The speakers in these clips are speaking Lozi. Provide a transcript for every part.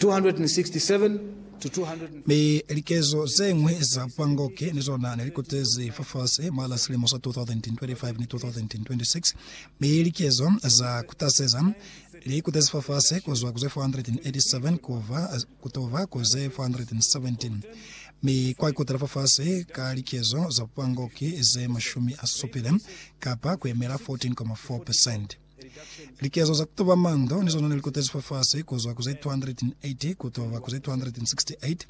267-200. Mi likezo zeñwi za Pangoke ni zona ne li kutezi fafasi mwa la silimo sa 2025 ni 2026, mi likezo za kutaseza li kutezi fafasi ku zwa ku ze 487 kuva kutova ku ze 417, mi kwa ikutela fafasi ka likezo za Pangoke ze mashumi a supile, kapa kuyemela 14.4 percent. Likezo za ku tuba mando ni zona ne li kotezi fafasi ku zwa ku ze 280 ku tuba ku ze 268.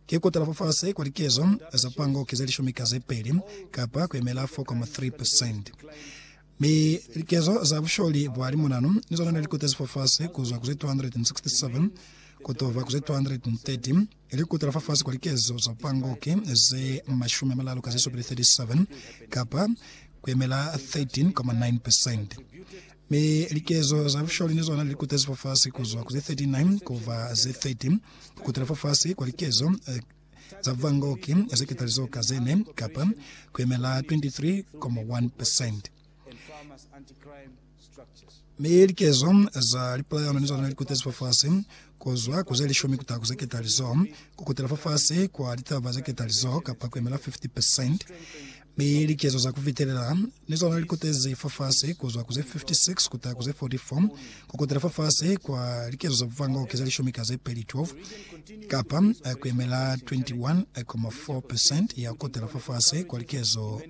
Ki ku tala fafasi kwa likezo za pango ki ze lishumi ka ze peli, kapa ku yemela 4.3 percent. Mi likezo za busholi bwa limonano ni zona ne li kotezi fafasi ku zwa ku ze 267 ku tuba ku ze 230. Ili kutala fafasi kwa likezo za pangoke ze mashumi amalalu ka zesupili, 37, kapa kuyemela 13,9%. Mi likezo za busholi ni zona lilikutezi fafasi kuzwa ku ze 39 kuba ze 30, kukutala fafasi kwa likezo za vangoke ze ketalizo ka zene, kapa kuyemela 23,1%. Mi likezo za lipulayano ni zona likutezi fafasi, kuzwa ku zelishumi kutaha ku zeketalizo, kukutela fafasi kwa litaba zeketalizo kapa kuemela 50%, mi likezo za kufitelela ni zona likutezi fafasi, kuzwa ku ze 56 kutaha ku ze 44, kukutela fafasi kwa likezo za bufango ki zelishumi ka zepeli, 12, kapa kuemela 21.4% ya kukutela fafasi kwa likezo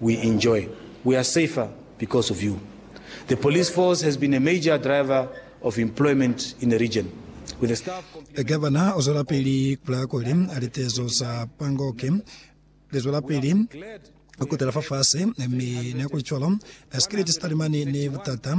We enjoy. We are safer because of you. The police force has been a major driver of employment in the region. With the staff complete- Gavana o zwelapili ku laya kuli litezo za PANGOC li zwelapili ku tela fafasi mi ni kuli cwalo sikiliti sa talimani ni butata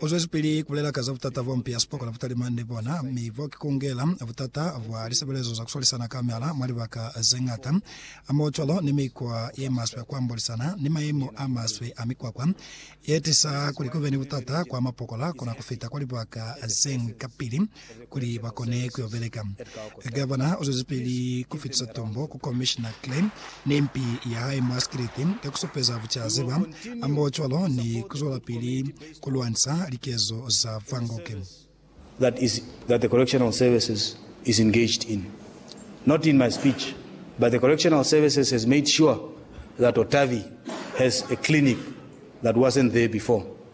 U zwezipili kubulela ka za butata bwa mpi ya sipokona butalimani ni bona, mi bo ki kungela butata bwa lisebelezo za kuswalisana kamela mwa libaka zeñata, hamoho cwalo ni mikwa yemaswe kwa mbolisana ni mayemo amaswe a mikwakwa, yetisa kuli kube ni butata kwa mapokola kuna kufita kwa libaka zeñwi kapili. kuli ba kone ku yo beleka. Gavana u zwezipili ku fitisa tombo ku Komishina Klein ni mpi ya hae mwa sikiliti ka ku supeza bucaziba hambocwalo ni ku zwelapili ku lwanisa likezo za Van Gogh. that is that the correctional services is engaged in not in my speech but the correctional services has made sure that Otavi has a clinic that wasn't there before.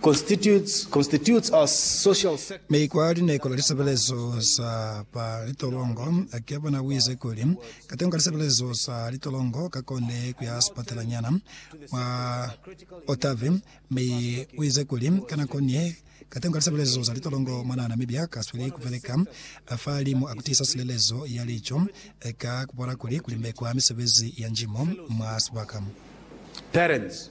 constitutes our social sector. Mi kwa lineko la lisebelezo za ba litolongo, Gavana uize kuli, Katengo ka lisebelezo za litolongo kakone kuya sipatela nyana mwa Otavi, mi uize kuli, ka nako ni ye, katengo ka lisebelezo za litolongo mwanaa Namibia kasweli kubeleka fa limu a kutiisa silelezo ya lico, ka kubona kuli kulimbekwa misebezi ya njimo mwa sibaka. Parents.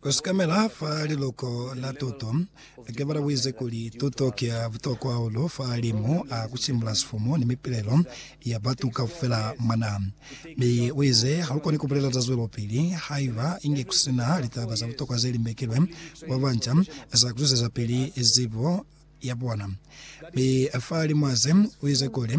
Kusikamela fa liluko la tuto, Ke balabuize kuli, Tuto ki ya butokwa hahulu fa limu a kusimbula sifumu ni mipilelo ya batu kaufela mwa naha. Mi uize, Halukoni kubulela za zwelopili haiba inge kusina litaba za butokwa zelimbekilwe kwa banca za kuzwezapili zibo yabona. Mi fa limu aze, uize kuli,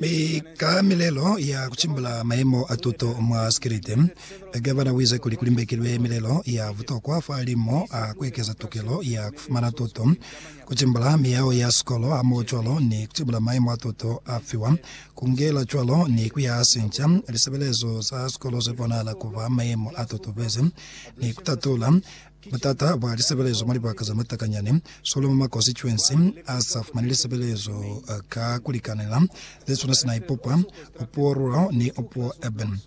Mi ka milelo ya ku cimbula mayemo a tuto mwa sikiliti, Gavana u ize kuli ku limbekilwe milelo ya butokwa fa limo a ku ekeza tukelo ya ku fumana tuto, ku cimbula miyao ya sikolo hamohocwalo ni ku cimbula mayemo a tuto a fiwa, ku ngela cwalo ni ku yaha sinca lisebelezo za sikolo ze bonahala ku ba mayemo a tutubezi, ni ku tatula Butata bwa lisebelezo mwa libaka za matakanyani, Solomo mwa konsituensi a sa fumani lisebelezo ka kulikanela, ze swana sina Ipopa, Opuwo Rural ni Opuwo Urban.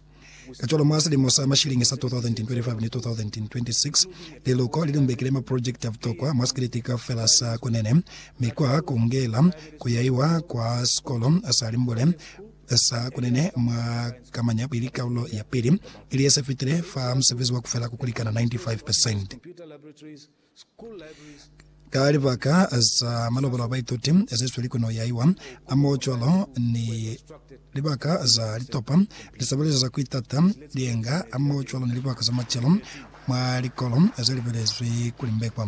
Kacwalo mwa silimo sa mashilingi sa 2025 ni 2026, liluko li lumbekile maprojekiti a butokwa mwa sikiliti kaufela sa Kunene, mi kwa kungela kuyaiwa kwa sikolo sa Limbule, Sa kunene mwa kamanya pili kaulo ya pili, ili ye se fitile, fa musebezi wa ku fela ku kulikana 95 percent. Ka libaka za malobolo a baituti ze sweli ku noyaiwa, hamohocwalo ni libaka za litopa, lisebelezo za ku itata, lienga, hamohocwalo ni libaka za macelo mwa likolo ze libelezwi ku limbekwa.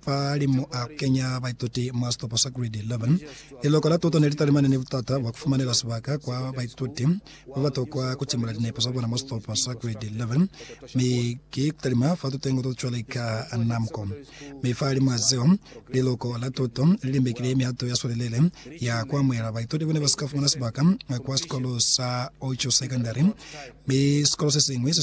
Fa li mo a kenya baituti mwa sitopo sa Grade 11, liloko la tuto ne li talimane ni butata bwa ku fumanela sibaka kwa baituti ba ba tokwa ku timula linepo za bona mwa sitopo sa Grade 11 mi ki ku talima fa tutengo to cwale ka NAMCO. Mi fa limwa zeo, liloko la tuto li limbekile mihato ya swelelele ya ku amuhela baituti ba ne ba si ka fumana sibaka kwa sikolo sa Ocho Secondary, mi sikolo se siñwi se swanela ku ba ni sibaka.